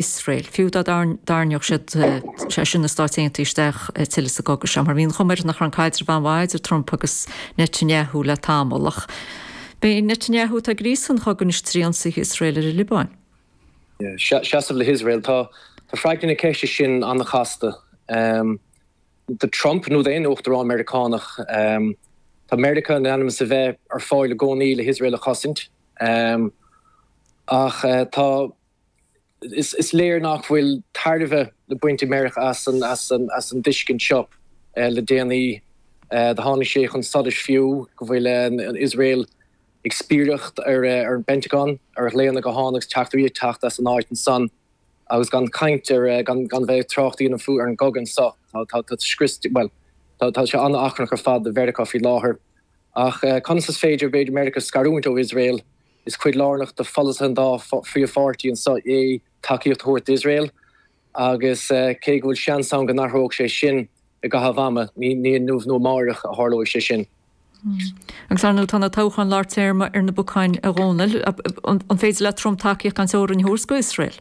Iosrael. Fiú dá dtarrneodh siad, sé sin na Stáit Aontaithe, isteach tuilleadh sa gcogadh seo, mar bhí an chuma air nach raibh an caidreamh an-mhaith idir Trump agus Netanyahu le tamall. Ach b'é Netanyahu atá ag gríosadh an chogaidh anois trí ionsaithe Iosrael ar an Liobáin. Seasamh le hIosrael. Tá freagra na ceiste sin an-chasta. Do Trump, nó d'aon Uachtarán Meiriceánach, tá Meiriceá in ainm is a bheith ar fáil i gcónaí le hIosrael a chosaint. Ach tá. is léir nach bhfuil tairbhe le baint ag Meiriceá as an dtuiscint seo. Le déanaí do tháinig sé chun solais fiú go bhfuil Iosrael ag spiaireacht ar an bPentagon, ar ghlaonna gutháin agus teachtairí ag teacht as an áit ansan. Agus gan caint ar, gan bheith ag trácht a dhéanamh fiú ar an gcogadh anso. Tá scrios, bhuel, tá sé an-achrannach ar fad do Mheiriceá faoi láthair. Ach conas is féidir, b'fhéidir, Meiriceá a scarúint ó Iosrael? Is cuid lárnach de pholasaithe an dá phríomhpháirtí anso é tacaíocht a thabhairt d'Iosrael agus cé go bhfuil seans ann go n-athróidh sé sin i gcaitheamh ama, ní inniu nó amáireach a tharlóidh sé sin. Agus, ar ndóigh, tá na toghcháin lár téarma ar na bacáin, a Dhónaill. An féidir le Trump tacaíocht gan teorainn a thabhairt do Iosrael?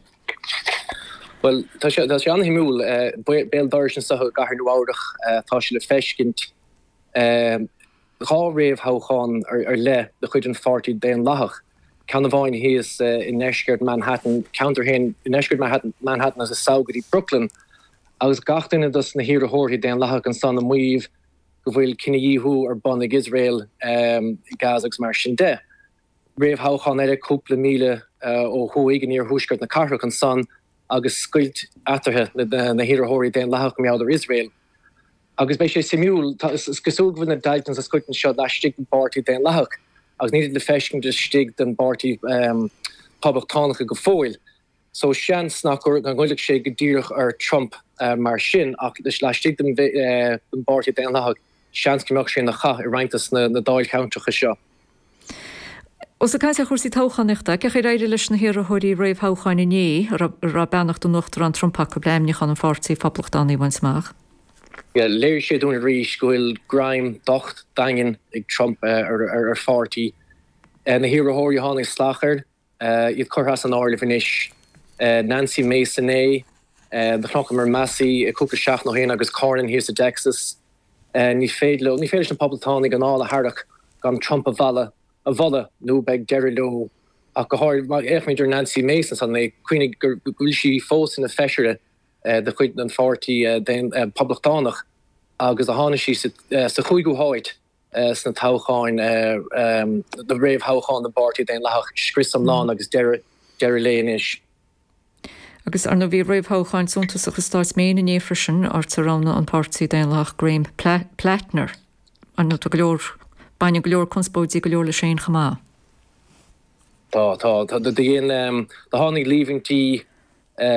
Bhuel, tá sé an-shuimiúil. Béal dorais anso i gcathair Nua-Eabhrach atá sé le feiscint. dhá réamhthoghchán ar leith de chuid an Pháirtí Daonlathach, ceann amháin thíos i ndeisceart Manhattan, ceantar féin i ndeisceart Manhattan agus sall go dtí Brooklyn, agus gach duine dos na hiarrthóirí Daonlathacha ansan ag maíomh go bhfuil cinedhíothú ar bun ag Iosrael i Gaza agus mar sin de. réamhthoghchán eile cúpla míle ó thuaidh in iarthuaisceart na cathrach. Ansan agus scoilt eatarthu, na hiarrthóirí Daonlathacha mar gheall ar Iosrael. Agus beidh sé suimiúil. Is cosúil go bhfuil na daill den sa scoilteanna seo laistigh den bPáirtí Daonlathach agus nílid le feiscint laistigh den bPáirtí Poblachtánach go fóill. so seans nach ngoillfeadh sé go díreach ar Trump mar sin ach laistigh den bpáirtí daonlathach seans go mbeadh sé ina chath i roinnt dos na dáilcheantracha seo. Ós ag caint ar chúrsaí toghchánaíochta, cén chaoi ar éirigh leis na hiarrthóirí réamhthoghcháin inné a raibh beannacht an Uachtaráin Trump acu le haimniúchán an pháirtí phoblachtánaigh a bhaint amach. Léirigh sé dúinn arís go bhfuil greim docht daingean ag Trump ar pháirtí na hiarrthóirí a tháinig salach air. iad curtha as an áireamh anois. Nancy Mace inné. Do chonaiceamar Massie cúpla seachtain ó shin agus Cornyn thíos i dTexas. Ní féidir leo, ní féidir leis na Poblachtánaigh anáil a tharrac gan Trump a mhealladh, a mholadh, nó beidh deireadh leo. Ach go háirid, má fhéachaimid ar Nancy Mace ansan inné, cuimhnigh go bhfuil sí fós ina feisire de chuid an pháirtí Poblachtánach agus do tháinig sí sa chúigiú háit sna toghcháin, na réamhthoghcháin don bpáirtí Daonlathach, scrios iomlán agus deireadh léi anois. Agus arna bhí réamhthoghcháin suntasach i Stáit Maine inné freisin, áit a roghnaigh an páirtí Daonlathach Graham Platner, ar ndóigh tá go leor, baineann go leor conspóidí go leor leisean chomh maith. Tá, tá, do dhein, do tháinig líomhaintí,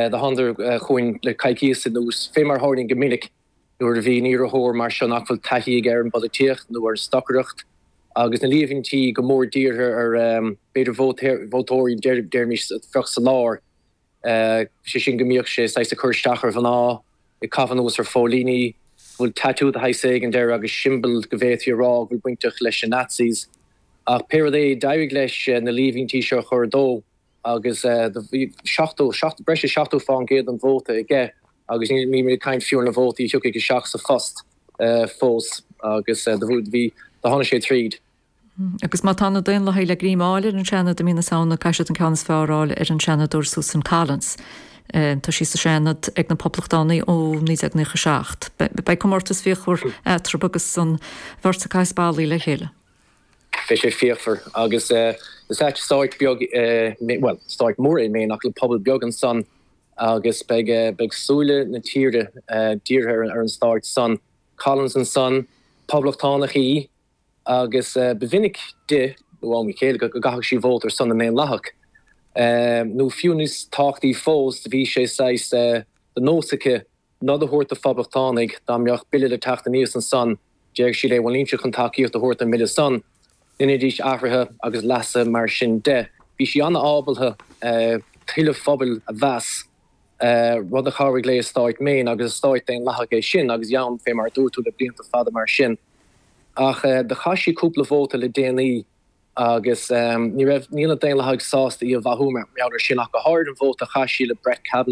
do thánadar chun cinn le coicíos anuas, fé mar tharlaíonn go minic nuair a bhíonn iarrthóir mar seo nach bhfuil taithí aige ar an bpolaitíocht nó ar an stocaireacht, agus na líomhaintí go mór dírithe ar b'fhéidir vótóirí déarfaimis a bheadh sa lár, sé sin go mbíodh sé saghas ag cur isteach ar mhná, ag caitheamh anuas ar phóilíní, go bhfuil tatú de shaghas éigin air agus siombail go bhféadfaí a rá go bhfuil sí bainteach leis na Nazis. Ach pé rud é, d'éirigh leis na líomhaintí seo a chur de. agus bhí breis is 70% den vóta aige agus níl caint fiú ar na vótaí a thiocfadh isteach sa phost fós agus do tháinig sé tríd. Agus má tá na Daonlathaigh le greim fháil ar an Seanad i mí na Samhna caithfidh siad an ceann is fearr a fháil ar an Seanadóir Susan Collins. Tá sí sa Seanad ag na Poblachtánaigh ó 1997. Beidh comórtas fíochmhar eatarthu agus an bheirt ag caitheamh spallaí le chéile. Beidh sé fíochmhar agus is ea stát beag, bhuel, stát mór é Maine ach le pobal beag ansan agus beidh beidh súile na tíre dírithe ar an stát san. Collins ansan, Poblachtánach í agus ba mhinic di, ó am go chéile, go gcaitheadh sí vóta ar son na nDaonlathach. Nó fiú níos tábhachtaí fós, bhí sé saghas de nós aici nod a thabhairt do phoblachtánaigh dá mbeadh bille le teacht aníos ansan déarfadh sí leo bhuel nílimse chun tacaíocht a thabhairt don mbille san, dheinidís athruithe agus leasuithe mar sin de. Bhí sí an-ábaltha toil an phobail a mheas, rud a chabhraigh léi i Stáit Maine agus is stát Daonlathach é sin agus í ann fé mar a dúirt tú le blianta fada mar sin ach do chaith sí cúpla vóta le déanaí agus ní raibh, níl na Daonlathaigh sásta é a mhaitheamh mar gheall ar sin ach go háirithe an vóta a chaith sí le Brett Kavanaugh.